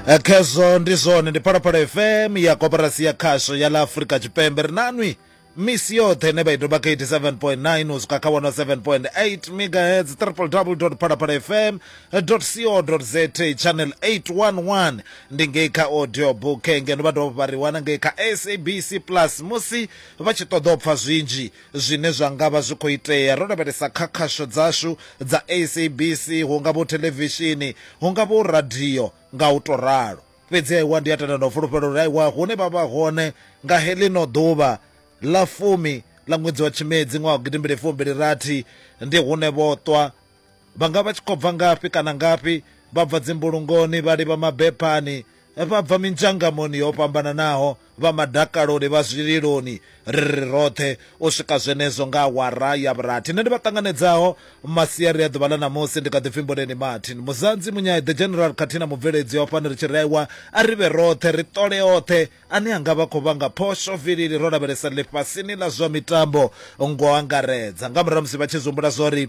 eh, khezwo ndi zwone ndi phalaphala fm ya koporasi ya khasho ya ḽa afurika tshipembe ri nanwi misi yoṱhe ine vha i doba kha 87.9 u swika kha 107.8 megahertz www phalaphala fm co za channel 811 ndi ngei kha audio book ngeno vha dovha vha ri wana ngei kha sabc plus musi vha tshi ṱoḓa u pfha zwinzhi zwine zwa nga vha zwi khou itea ro lavhelesa kha khasho dzashu dza SABC, hu nga vho theḽevishini, hu nga vho radio nga u tou ralo. Fhedzi aiwa, ndi a tenda na u fulufhela uri aiwa, hune vha vha hone nga heḽino ḓuvha ḽa fumi ḽa ṅwedzi wa Tshimedzi ṅwaha wa gidimbili fumbili rathi, ndi hune vho ṱwa Vha nga vha tshi khou bva ngafhi kana ngafhi, vha bva dzimbulungoni, vha livha mabephani, vha bva minzhangamoni yo fhambananaho, vha madakaloni, vha zwililoni, ri ri roṱhe u swika zwenezwo nga awara ya vhurathi. Nṋe ndi vha ṱanganedzaho masiari a ḓuvha ḽa ṋamusi, ndi kha ḓi pfi Mboneni Martin. Muzanzi, Munyai, The General khathihi na mubveledzi wa fhano ri tshi raiwa a ri vhe roṱhe, ri ṱole oṱhe ane a nga vha khou vhanga phosho vilili ro lavhelesa ḽifhasini ḽa zwa mitambo ngo angaredza. Nga murahu ha musi vha tshi zwi humbula zwa uri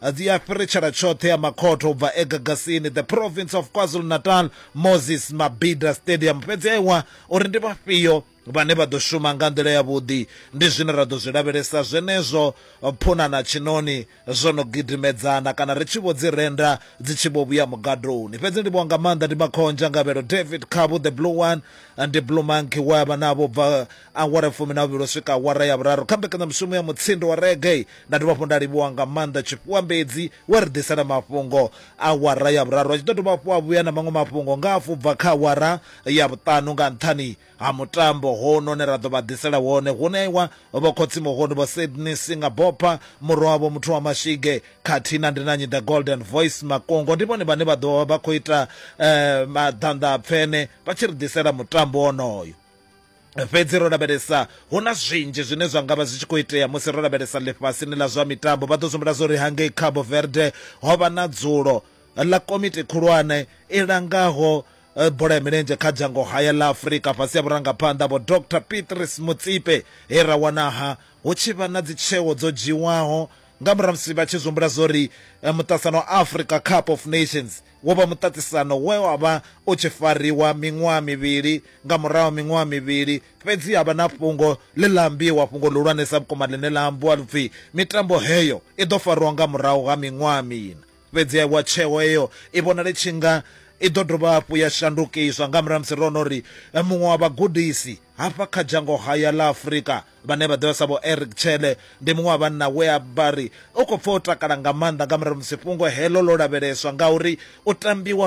a dzi a fhiritshela tshoṱhe ya makhotho u bva e Gagasini, the Province of KwaZulu-Natal, Moses Mabhida Stadium. Fhedzi a iwa uri ndi vhafhio vhane vha ḓo shuma nga nḓila ya vhuḓi. Ndi zwine ra ḓo zwi lavhelesa zwenezwo Phuna na Tshinoni zwo no gidimedzana kana ri tshi vho dzi renda dzi tshi vho vhuya mugadoni. Fhedzi ndivhuwa nga maanḓa ndi Makhonzha Ngavhelo David Khabu the Blue One and Blue Monkey we a vha navho bva Awara fumi na vhuvhili u swika awara ya vhuraru kha mbekanyamushumo ya Mutsindo wa Reggae. Nda dovha hafhu nda livhuwa nga maanḓa Tshifhuwambedzi we a ri ḓisela mafhungo awara ya vhuraru, a tshi ḓo dovha hafhu a vhuya na maṅwe mafhungo nga hafhu u bva kha awara ya vhuṱanu nga nṱhani ha mutambo hono une ra ḓo vha ḓisela wone. Hu ṋeiwa Vho Khotsi-Muhoni, Vho Sydney Singabopha, murwa wavho Muthu wa Mashige khathihi na Ndi na Nnyi The Golden Voice Makungo. Ndi vhone vhane vha ḓo vha vha khou ita maḓanḓa a pfene vha tshi ri ḓisela mutambo wonoyo. fhedzi ro lavhelesa hu na zwinzhi zwine zwa ngavha zwi tshi khou itea musi ro lavhelesa ḽifhasini ḽa zwa mitambo vha ḓo sumbula zwori hangei cabo verde ho vha na dzulo ḽa komiti khulwane i langaho eh, bola ya milenzhe kha dzhango haya ḽa afurika fhasi ya vhurangaphanḓa vho dr petris mutsipe he ra wanaha hu tshi vha na dzitsheo dzo dzhiwaho nga murahu musi vha tshi zwi humbula zwori eh, muṱasano wa africa cup of nations Wo vha muṱaṱisano we wa vha u tshi fariwa miṅwaha mivhili nga murahu ha miṅwaha mivhili. Fhedzi ha vha na fhungo ḽe ḽa ambiwa, fhungo ḽihulwanesa vhukuma ḽine ḽa ambiwa lu pfi, Mitambo heyo i ḓo fariwa nga murahu ha miṅwaha miṋa. Fhedziha vho, tsheo heyo i vhonala i tshi nga i ḓo dovha hafhu ya shandukiswa nga murahu ha musi ro no ri muṅwe wa vhagudisi hafha kha dzhango haya ḽa Afrika vhane vha ḓivha sa vho Eric Chele ndi muṅwe wa vhanna we a vha ri u khou pfa o takala nga maanḓa nga murahu musi fhungo heḽo ḽo lavheleswa ngauri u tambiwa